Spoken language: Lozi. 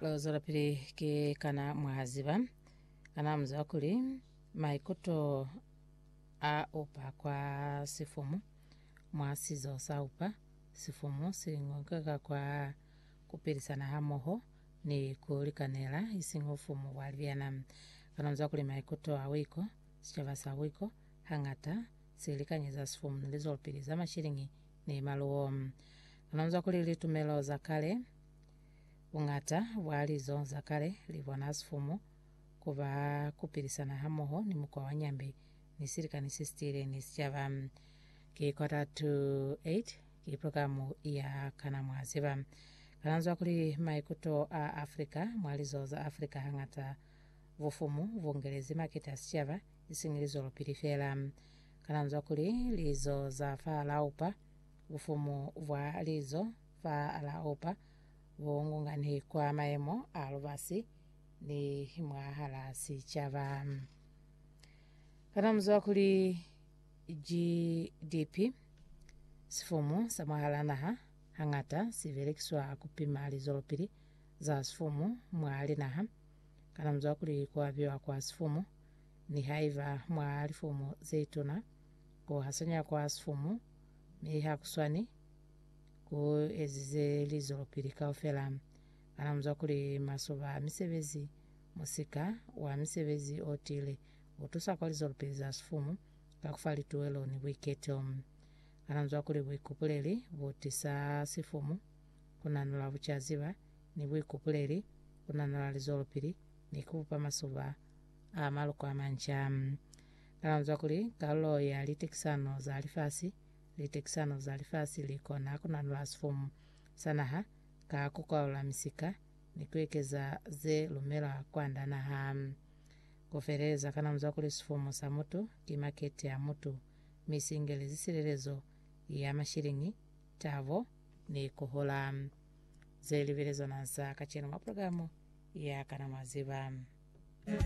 Lo zwelapili ki kana mwa ziba, kana mu ziba kuli maikuto a upa kwa sifumu mwa sizo sa upa sifumu si ngokeka kwa kupilisana hamoho ni ku likanela, ising ufumu bwa libyana. Kana mu ziba kuli maikuto a wiko, sicaba sa wiko, hangata si likanyeza sifumu ni lizwelopili za mashilingi ni maluwo? Kana mu ziba kuli litumelo za kale, Buñata bwa lizo za kale li bona sifumu ku ba ku pilisana hamoho ni mukwa wa nyambe ni silikani se si tiile ni sicaba. Ki quarter to eight, ki programu ya Kana Mwa Ziba. Kalanzwa kuli maikuto a Afrika mwa lizo za Afrika hañata bufumu bu ngelezi makete a sicaba, isiñi lizwelopili feela. Kalanzwa kuli lizo za fa Laupa, bufumu bwa lizo Fa la opa bo ngungani kwa mayemo a lubasi ni mwahala sicaba. Kana muzwa kuli GDP, sifumu sa mwahala naha, hangata si belekiswa ku pima lizwelopili za sifumu mwa linaha? Kana muzwa kuli ku abiwa kwa sifumu, nihaiba mwa lifumu ze tuna, ku hasanya kwa sifumu mi ha ku swani? ku ezize lizwelopili kaufela. Kana muzwa kuli masoba a misebezi, musika wa misebezi o tiile, u tusa kwa lizwelopili za sifumu ka ku fa lituwelo ni buiketo? Kana muzwa kuli buikupuleli bu tisa sifumu, ku nanula bucaziba, ni buikupuleli, ku nanula lizwelopili, ni ku bupa masoba a maloko a manca? Kana muzwa kuli kalulo ya litekisano za lifasi Litekisano za lifasi li kona ku nanula sifumu sa naha ka ku kwalula misika ni ku ekeza ze lumelwa kwand'a naha. Ku feleleza ka namuza kuli sifumu sa mutu ki makete ya mutu, mi si ingelezi silelezo ya mashiliñi, tabo, ni ku hola. Ze libelezwa naha sa kacenu mwa pulogalamu ya Kana Mwa Ziba?